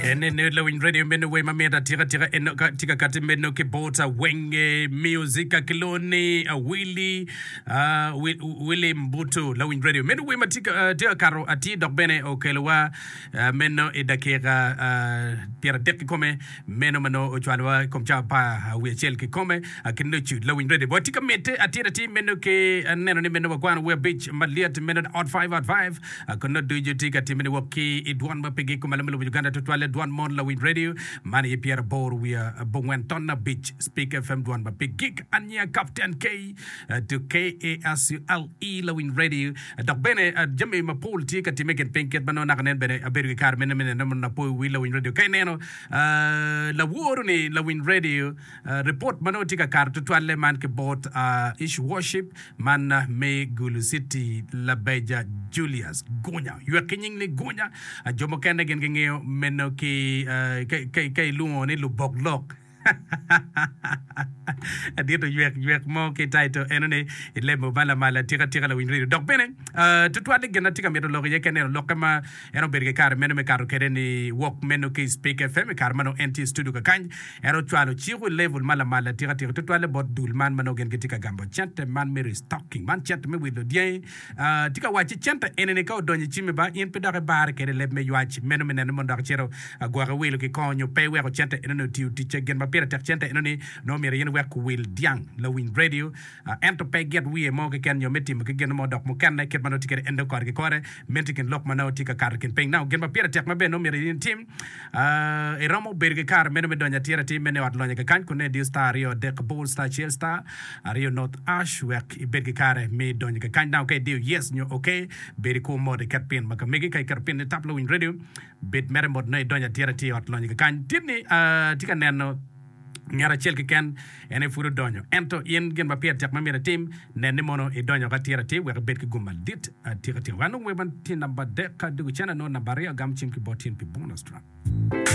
En en en lawiny radio meno we ma mita tika tika en ka tika kati meno ki bota wenge music ka kiloni a Willy a Wi- Willy Mbutu lawiny radio meno we ma tika ah, tika kato ati dok bene okelowa ah, meno i dakika ah, pyera dek ki kome Meno ma nongo ocwalowa i kom cawa apar wiye acel kikome ki nucu lawiny redi. Watye ka mitte atir atir meno ki neno ni meno wakwano wer abic malyet meno ni Ot Five, Ot Five, konno ducu tye ka timmene wok ki i dwan ma pigi kumalo me lobo Uganda tutwalle dwan mon lawiny radio man aye pyera aboro wiye abongwen ton abic Speak FM dwan ma pigik aniya Captain K to KASULE lawiny radio Dok bene, jami mapol tye ka timme i kin piny kit ma nongo naka nen bene abedo ki kare me neno mondo apo i wi lawiny redio. Ka ineno laworo ni lawiny redio, ripot ma nongo tye ka kato tutwalle man ki bot Ish Worship man me Gulu City, Labeja Julius Gunya, ywek ki nying ni Gunya, jo mukene gin gingeyo meno ki ka ilwongo ni lubok lok. Adit oywek ywek mo ki taito eno ni i lemo ma lamal atika tika lawiny redio dok bene tutwal ni gin atye ka mito loko iye kene eno lokke ma en obedo ki kare meno me kato kede ni wok meno ki i Spik FM i kare ma nongo en tye i studio kakany en ocwalo ciko i level ma lamal atika tika tutwalle bot dul man ma nongo gin gitye ka gamo cente man me restocking man cente me wilo dyangi Atye ka wacci cente enini ka odonyo i cimi ba, in pe dok ibarre kwede i leb me ywac meno me neno mondo dok icito agwoke iwilo ki kong nyo pe iweko cente enoni otiyo ticce. Gin ma pire tek cente enoni nongo myero in iwek kuwil dyang lawiny radio ento pe git wiye mo keken nyo me timo ki gin mo dok mukene kit ma nongo tye kwede en dong kore ki kore menti i kin lok ma nongo tye ka kato i kin piny. Now gin ma pire tek ma bene nongo myero in itim iromo bedo ki kare meno me donyo atira atir meno i ot lonya kekany kun neno diyo star aryo adek abor star acel star. Ariyo, North Ash, Wek ibed ki kare me donyo ki kany dano ka idiyo yes nyo ok, bed i kwo mot iket pin ma ka megi. Ka iketo pin ni Tap Lawiny Radio, bed mere mot nongo idonyo atira tye i ot lonyo ki kany. Tit ni atye ka neno nget acel keken en aye pud odonyo. Ento in gin ma pire tek ma myero itim, nen ni mono idonyo woko atira atir wek ibed ki gum madit atika tika. Wek anong wer man tye namba adek, ka adwogo cene nongo namba aryo, agamo cim ki bot in pi bonus track.